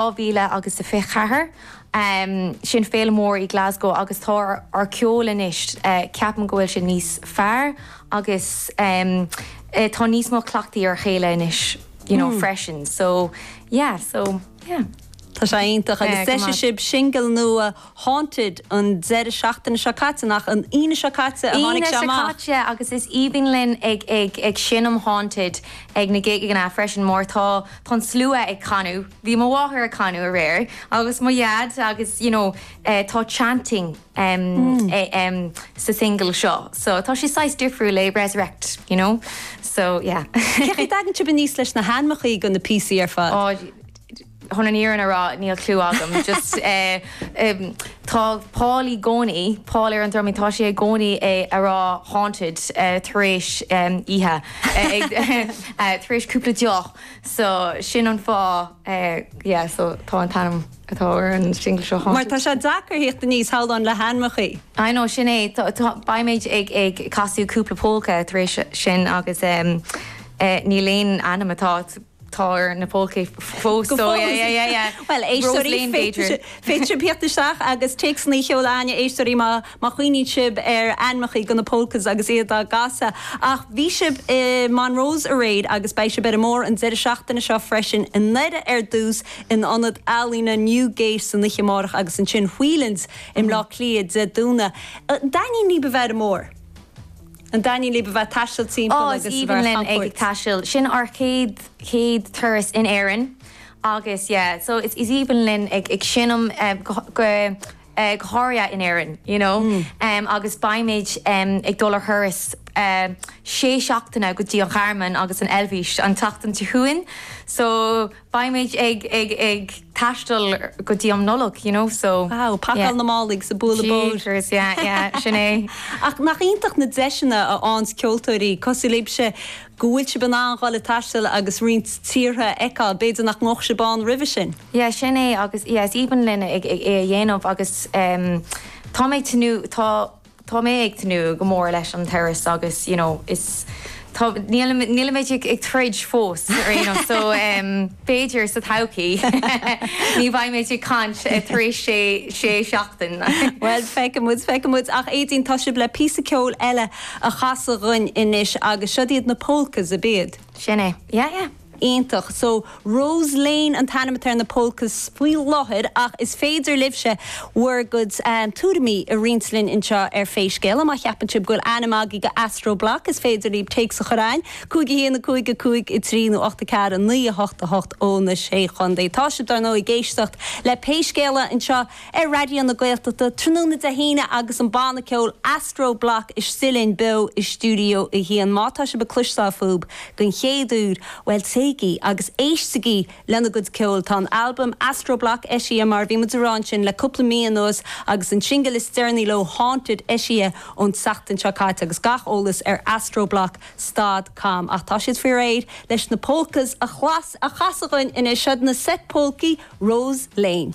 2024. Sin féile mór i Glasgow agus tá ár ceol anois, ceapaim go bhfuil sé níos fearr agus tá níos mó cleachtaidh ar a chéile anois you know freisin so yeah so yeah. Tá sé iontach agus d'eisigh sibh singil nua Haunted an deireadh seachtaine seo caite, nach an Aoine seo caite a tháinig sé amach? Aoine seo caite agus is aoibhinn linn ag ag ag seinm Haunted ag na gigeanna freisin mar tá tá an slua ag canadh, bhí mo mháthair ag canadh aréir agus mo dhaid agus you know eh tá chanting em eh em sa single seo so tá sé saghas difriúil le Resurrect you know so yeah. Cén chaoi a dtagann sibh aníos leis na hainmeachaí do na píosaí ar fad? chun an fhírinne a rá níl clue agam just eh tá Paul i gcónaí Paul ar an drumaí tá sé i gcónaí ag rá haunted eh tar éis em oíche eh, eh, tar éis cúpla deoch so sin an fáth eh yeah so tá an t-ainm atá ar an single seo Mar tá sé deacair thíocht aníos thalann le hainmeachaí. I know sin é tá- tá- beimid ag ag casadh cúpla polca tar éis sin agus em eh, níl aon ainm atá Tá ar na polcaí fós. Go fóill. Yeah, yeah, yeah. Bhuel, éisteoirí, féadfaidh sibh thíocht isteach agus téacsanna a sheoladh chugainn, éisteoirí, má chuimhníonn sibh ar ainmeachaí do na polkas agus iad á gcasadh. Ach bhí sibh i Monroe's aréir agus beidh sibh ar an mbóthar an deireadh seachtaine seo freisin i nDoire ar dtús in ionad ealaíne Newgate san oíche amárach agus ansin Whelan's i mBleá Cliath Dé Domhnaigh. Dtaitníonn libh a bheith ar an mbóthar. An dtaitníonn libh a bheith ag taisteal timpeall agus a bheith ar chamchuairt. Áh, is aoibhinn linn ag ag taisteal. Sin ár chéad chéad turas in Éirinn agus yeah, so is is aoibhinn linn ag ag seinm em go go eh go háirithe in Éirinn, you know. Em agus beimid em ag dul ar thuras eh sé seachtaine go dtí an Ghearmáin agus an Eilvéis an tseachtain seo chugainn, so. Beimid ag ag ag taisteal go dtí am Nollag you know so. Wow, pacáil na málaí agus ag bualadh bóthair. Jeepers yeah yeah sin é. Ach nach iontach na deiseanna a fhánns ceoltóirí cosúil libhse go bhfuil sibh in ann dhul ag taisteal agus roinnt tíortha a fheiceáil b'fhéidir nach ngabhfadh sibh ann roimhe sin. Yeah sin é agus yeah is aoibhinn linn ag ag é a dhéanamh agus em tá mé ag tnúth tá tá mé ag tnúth go mór leis an turas agus you know is tá níl nílimid ag ag troid fós ar aon nós so em b'fhéidir sa todhchaí ní bheidh mé ag caint tar éis sé sé seachtain. Bhuel feicfidh muid feicfidh muid ach Éadaoin tá sibh le píosa ceoil eile a chasadh dhúinn anois agus siod iad na Polkas ab iad? Sin é yeah yeah. Iontach. So Rose Lane an t-ainm atá ar na polkas faoi láthair ach is féidir libhse bhur gcuid tuairimí a roinnt linn anseo ar Pé Scéal É. Má cheapann sibh go bhfuil ainm agaibh do Astro Bloc is féidir libh téacs a chur chugainn, 51 5 5 3 nó 8 4 9 8 8 ó na Sé Chondae. Tá sibh dar ndóigh ag éisteacht le Pé Scéal É anseo ar Raidió na Gaeltachta tráthnóna Dé hAoine agus an banna ceoil Astro Bloc istigh linn beo i Stiúideo 1. Má tá sibh ag cloisteáil fúthub den chéad uair, bhuel téigí agus éistigí lena gcuid ceoil. Tá an albam Astro Bloc eisithe, mar a bhí muid ag rá ansin le cúpla mí anuas, agus an singil is deireanaí leo Haunted eisithe ón tseachtain seo caite agus gach eolas ar Astro Bloc stad cam. Ach tá siad faoi réir leis na Polkas a chasadh dhúinn anois. Seo na seit-pholcaí, Rose Lane.